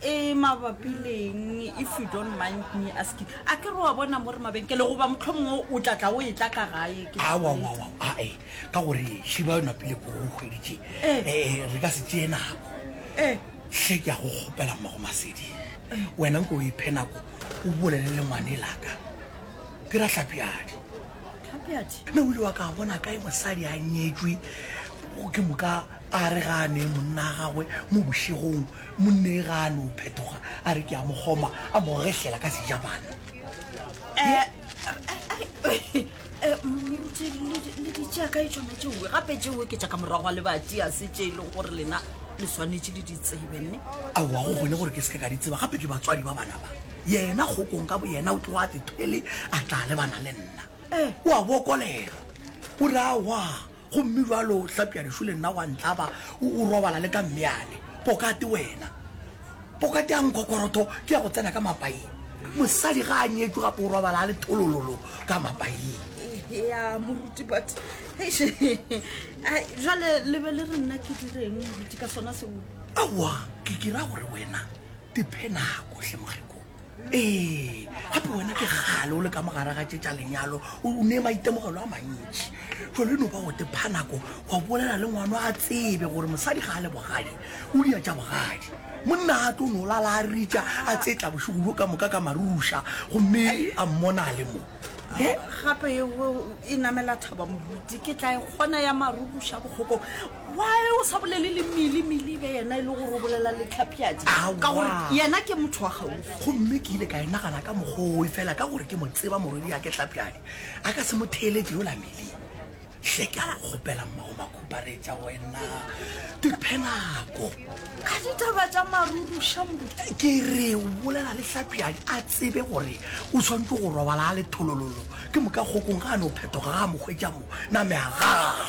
E mabapi leng if you don't mind me asking? A ke re wa bona mo re mabenkele goba mohlomongwe o tla tla o e tla ka gae ke sa awa awa ae ka gore šiba yona pele po go kgweditše Eh. Eh, re ka se tšee nako Eh. hle ke ya go kgopela mmago masedi wena nko o iphe nako o bolele le ngwane laka ke ra tlhapiadi Tlhapiadi. mme o ile wa ka a bona kae mosadi a nyetswe o ke moka a re ga a ne monna wa gagwe mo bošegong Monnega a no phetoga a re ke a mo goma, a mo gehlela ka Sejapane. Moruti, le di tšea kae tšona tšeoe? Gape tšeoe ke tša ka morago ga lebati, a se tše e lego gore lena le swanetše le di tsebe, nne? Aowa, go kgone gore ke seke ka di tseba, gape ke batswadi ba bana ba. Yena kgokong ka boyena o tloga a se thwele a tla lebana le nna. O a bokolela, o re a wa. Gomme bjalo Hlapjadišu le nna wa ntlaba, o, o robala le ka mmeane. Pokate wena. Pokate ya nkhokorotho ke ya go tsena ka mapaing. Mosadi ga a nyetšwe gape o robala a le tholololo ka mapaing. Ya, moruti, but, eish, ai, jale le be le re nna ke direng, moruti, ka sona seo? Aowa, ke, ke ra gore wena, diphe nako, hle mogeko. ee gape wena ke gale o le ka mogare ga tše tša lenyalo o ne maitemogelo a mantši jalo no ba go tepha nako wa bolela le ngwano a tsebe gore mosadi ga a le bogadi o dia tša bogadi monna a tlo no lala a ritša a tsetla bošego bo ka moka ka maruša gomme a mmona a le mo gape e namela thaba moruti ke tla e kgona ya marukuša bokgoko Why o sa bolele le Mili Mili be yena e le gore o bolela le Tlhapjadi ka gore yena ke motho wa gaufi. Gomme ke ile ka e nagana ka mokgoo e fela ka gore ke mo tseba morwedi ya ke Tlhapjadi a ka se mo theeletše yola Mili. Hle ke a go kgopela mmago makhuparetša wena diphenako ka ditaba tša maruruša mo. Ke re o bolela le Tlhapjadi a tsebe gore o tshwanetse go robala a le tholololo ke moka kgokong ga a no phetoga ga a mo hwetša mo na meagaa.